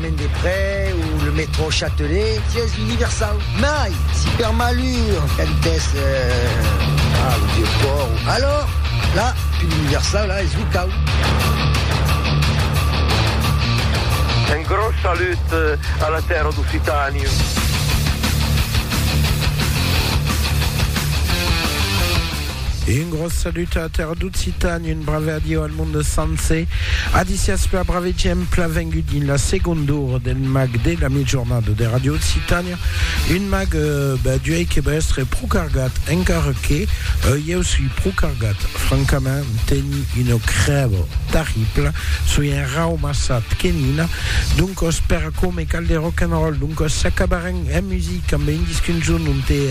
Chemin des Près o le métro Châtelet, sièis universau, mai si per malur cantès a lo vieu pòrt o alors la pil universau la es lo cau. Un gros salut a la tèrra d'Occitània. Un gros salut a Terraducitan, un brave adieu al monde sencer. A disias per brave exemple vengut dins la seconde hora del mag de la mitjornada de Radio Occitania. Un mag euh, ben, duei que va estre pro cargat, encara que euh, eu sui pro cargat. Francament, teni una crèva terribla, sui un raumassat que nina. Doncos, per aquò me cal de rock and roll, doncos s'acabarem en music amb un disc un jorn on te,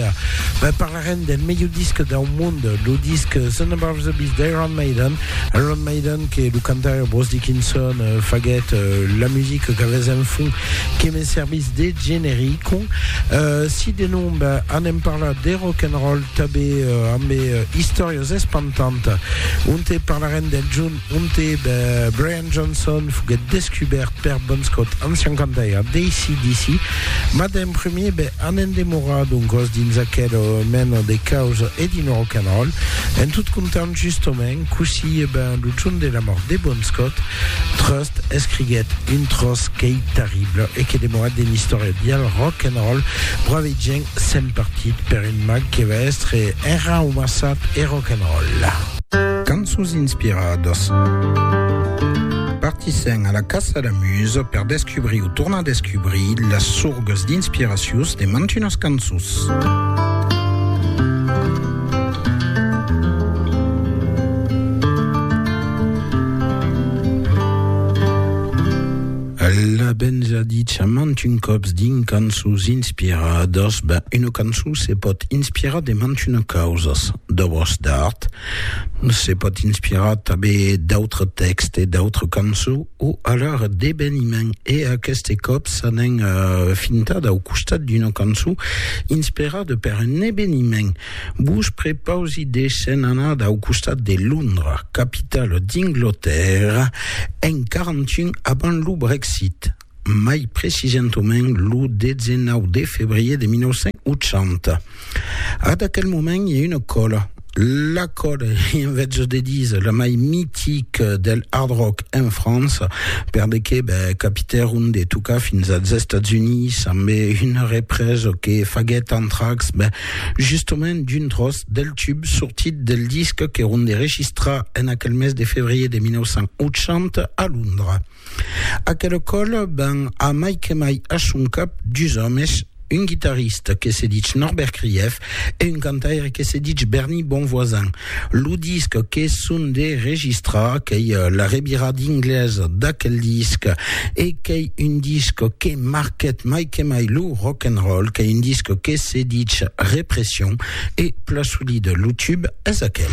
ben, Parent del melhor disc dau mond, lo disc Sun Above the Beast d'Iron Maiden. Iron Maiden que lo cantaire Bruce Dickinson faguèt la musica qu'avètz en fond que me servís de generico. Si de nom anem parlar de rock'n'roll, tabé ambe istòrias espantantas, onte parlarem del Jun Monte de Brian Johnson foguèt descubèrt per Bon Scott en 51 d'ACDC, mas d'en premier be an endemorat d'un còs dins aquela mena de causa e dins lo rock and roll. En tot comptant, justement, cossí e ben lo jorn de la mòrt de Bon Scott, Trust escriguèt un tròç qu'ei terrible e que demora dins l'istòria dial rock and roll, Bravegent s'en partit per un mag que va èstre enraumassat e rock and roll. Cançons inspiradas. Partissèm a la caça la musa per descubrir o tornar descubrir las sorgas d'inspiracions de mantunas cançons. Alla ben ja dicha mantun còps dins cançons inspiradas, ben una cançon se pòt inspirar de mantunas causas, d'òbras d'art, se pòt inspirar tanben d'autres tèxtes, d'autres cançons o alara d'eveniments e aqueste còp s'anèn fintada au costat d'una cançon inspirada per un eveniment. Vos prepausi de se'n anar dau costat de Londra, capitala d'Inglotèrra, en 41 abans lo Brexit, mai precisentament lo 19 de febrier de 1980. Ad aquel moment i a una còla, la còla, i en vezos de díser, la mai mitica del hard rock en França, per de que ben, capitèron de tocar fins als Estats Units, ambé una represa que faguèt Anthrax, ben, Justement, d'un tròç del tub sortit del disc que Ronde registra en aquel mes de febrier de 1980 a Londra. Aquel còl ven a mai que mai a son cap dus òmes, un guitarrista que se ditz Norbert Krief e un cantaire que se ditz Bernie Bonvoisin, Lo disc que son de registrar, qu'ei la revira d'ingles d'aquel disc, e qu'ei un disc que marquèt mai que mai lo rock and roll, qu'ei un disc que se ditz Repression, e plan solid lo tube es aquel.